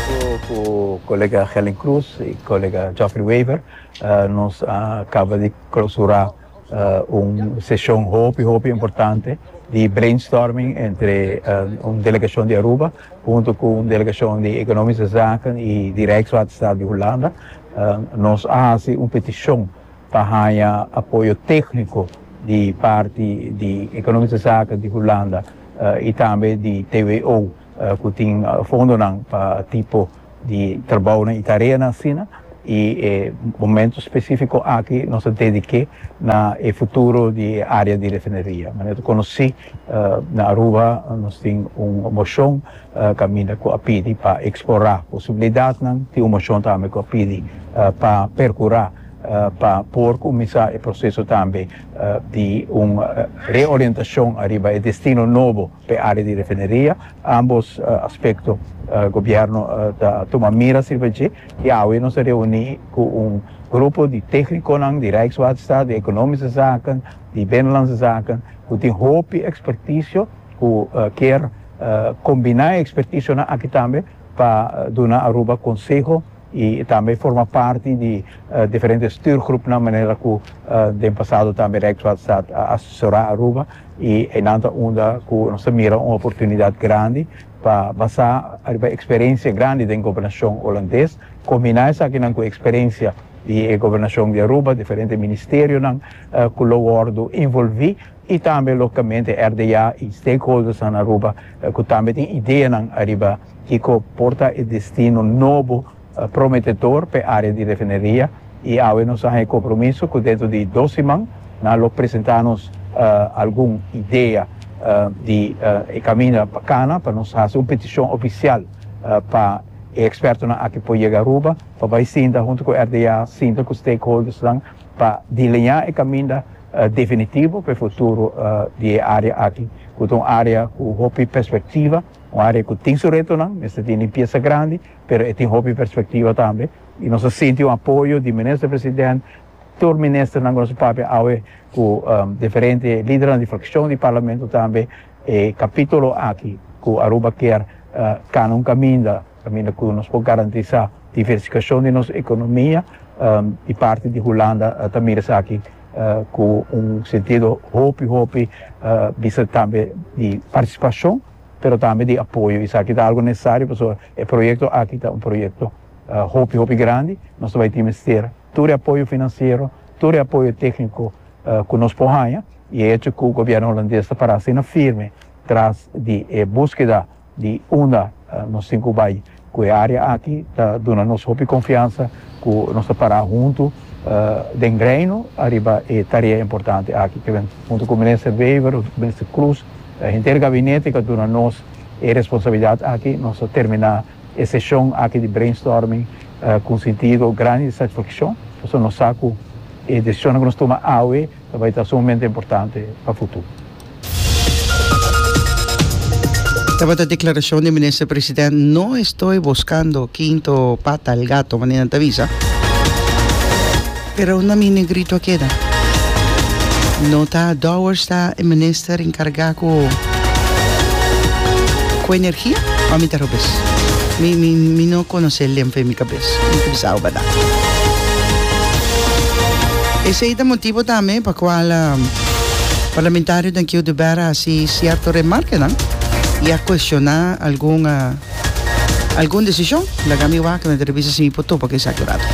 Junto cu colega Helen Cruz y colega Geoffrey Wever nos a caba di clausura un sesion hopi hopi importante di brainstorming entre un delegacion di Aruba junto cu un delegacion di Economische Zaken y di Rijkswaterstaat di Hulanda. Nos a haci un peticion pa haya apoyo tecnico di parti di Economische Zaken di Hulanda y tambe di TWO. ku tin fondonan pa tipo di trabounan i tareanan asina i e momentu spesifiko aki nos ta dedik'é na e futuro di e área di refineria. Manera ta konosí na Aruba nos tin un moshon kaminda ku a pidi pa eksplorá posibilidatnan, tin un moshon tambe ku a pidi pa perkurá pa por kuminsá e proseso tambe di un reorientashon ariba e destino nobo. P'e área di refineria, ámbos aspekto gobièrnu ta tuma miras riba dje i awe nos a reuní ku un grupo di téhnikonan di Rijkswaterstaat, di Ekonomische Zaken, di Binnenlandse Zaken ku tin hopi ekspertisio ku kier kombiná e ekspertisionan aki tambe pa duna Aruba konseho, y tambe forma parti di diferente stuurgroepnan manera cu den pasado tambe Rijkswaterstaat a asesora Aruba y einan ta unda cu nos ta mira un oportunidad grandi pa basa riba experiencia grandi den Gobernacion Holandes, combina esakinan cu experiencia di e Gobernacion di Aruba, diferente ministerionan cu lo wordo involvi y tambe locamente RDA y stakeholdersnan Aruba cu tambe tin ideanan ariba kico por ta e destino nobo prometedor p'e area di refineria y awe nos a haña e compromiso cu dentro di dos siman nan lo presenta nos algun idea di e caminda pa cana pa nos haci un peticion oficial pa e expertonan aki por yega Aruba pa bay sinta hunto cu RDA sinta cu stakeholdersnan pa delineá e caminda definitivo pa e futuro di e área aki, ku ta un área ku hopi perspektiva, un área ku tin su retonan, mester tin limpiesa grandi, pero e tin hopi perspektiva tambe, i nos a sinti un apoyo di Minister President, tur ministernan ku nos a papia awe, ku diferente lidernan di frakshon di Parlamento tambe, e kapitulo aki ku Aruba kier kanan un kaminda. kaminda ku nos por garantisá diversifikashon di nos ekonomia, i parti di Hulanda ta mira esaki ku un sentido hopi hopi bisa tambe di partisipashon pero tambe di apoyo. Esaki ta algu nesesario pasobra e proyekto aki ta un proyekto hopi hopi grandi, nos ta bai tin mester tur e apoyo finansiero, tur e apoyo tékniko ku nos por haña, i e hecho ku gobièrnu Hulandes ta pará asina firme tras di e búskeda Di unda nos tin cu bay cu e area aki ta duna nos hopi confiansa cu nos ta para hunto den Reino ariba e tarea importante aki. Kiben hunto cu Minister Wever, Minister Croes, henter Gabinete cu a duna nos e responsabilidad aki, nos a termina e sesion aki di brainstorming cu un sintido grandi di satisfaccion pasobra nos sa cu e decisionan cu nos tuma awe, Ta bai ta sumamente importante pa futuro. Tabata declaracion di Minister President No estoy buscando quinto pata al gato manera nan ta bisa. Pero na mi negrito a keda. No ta Dowers ta e minister encarga cu cu energia? Or mi ta robes? Mi mi mi no conoce el den fe mi cabeza. Tin ku bisa ober nan. Esei ta motibu tambe pa kual parlamentario den Kieu di Bèra a hasi sierto remarkanan i a kuestioná algun algun desishon. Laga mi wak, mi ta revisa si mi por topa ku esaki rato.